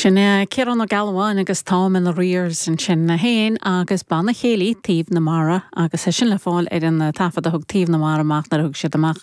Sin é Ciarán Ó Gealbháin agus Táim in Arrears ansin a haon agus Banna Céilí Taobh na Mara agus é sin le fáil ar an taifead a thug Taobh na Mara amach nuair a thug siad amach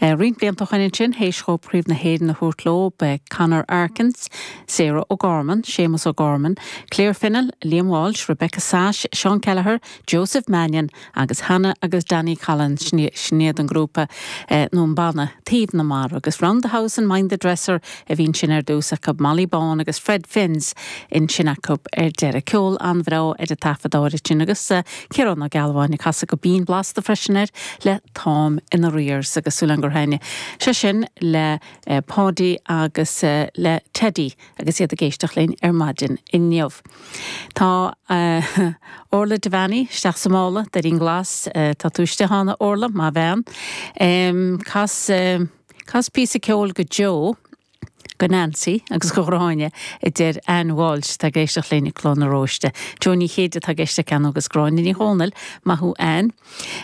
eh, roinnt blianta ó shin ansin théis dóibh Craobh na hÉireann a thabhairt leo ba é Conor Arkins, Sarah O'Gorman, Séamus O'Gorman, Claire Fennell, Liam Walsh, Rebecca Sash, Seán Kelleher, Joseph Mannion agus Hannah agus Danny Collins sin iad an grúpa nó an banna Taobh na Mara agus Round the House and Mind the Dresser a bhíonn sin ar dtús acu Molly Bawn agus Fred Finns ansin acu ar deireadh ceol an-bhreá ar an taifead áirid sin agus Ciarán Ó Gealbháin a casadh go binn blasta freisin air le Táim in Arrears agus súil agam gur thaitnigh sé sin le Paudie agus le Teddy agus iad ag éisteacht linn ar maidin inniu. Tá Orla Devaney isteach sa mála d'Eirinn Glas. Tá tú istigh cheana, Orla, maith an bhean. Cas, cas píosa ceoil go Joe, go Nancy agus go Gráinne, a deir Anne Walsh atá ag éisteacht linn i Cloch na Rón. Joe Ó Céide atá ag éisteacht cheana agus Gráinne Ní Dhomhnaill. Maith thú, Anne.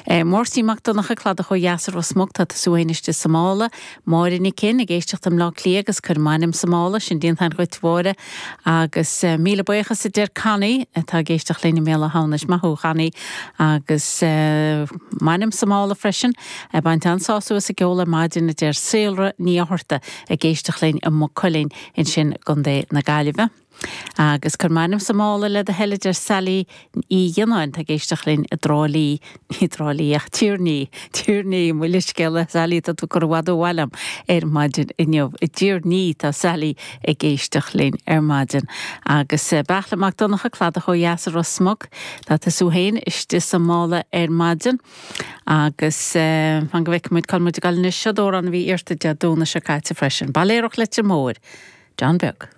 Máirtín Mac Donncha, Cladach ó Dheas i Ros Muc, tá tú anois istigh sa mála. Máire Nic Fhinn, ag éisteacht i mBleá Cliath agus cuir m'ainm sa mála, sin déanta anois dhuit a Mháire. Agus míle buíochas a deir Connie atá ag éisteacht linn i mBéal Átha hAmhnais. Maith thú a Chonnie. Agus m'ainm sa mála freisin. Ag baint an-sásamh as an gceol ar maidin a deir Sarah Ní Fhátharta, ag éisteacht linn i Maigh Cuilinn, ansin i gContae na Gaillimhe. Agus cuir m'ainm sa mála le do thoil, a deir Sally Uí Ghionnáin, atá ag éisteacht linn i dTrá Lí, ní Trá Lí ach Tír an Fhia, Tír an Fhia, mo leithscéal a Sally, tá tú curtha i bhfad ó bhaile agam ar maidin inniu. I dTír an Fhia atá Sally ag éisteacht linn ar maidin. Agus Beartla Mac Donncha, cladach ó dheas i Ros Muc, tá tú féin istigh sa mála ar maidin. Agus fan go bhfeicfidh muid cá bhfuil muid ag dul anois, seod amhrán a bhí iarrtha Dé Domhnaigh seo caite freisin, Bailéaraí Leitir Móir, John Beag.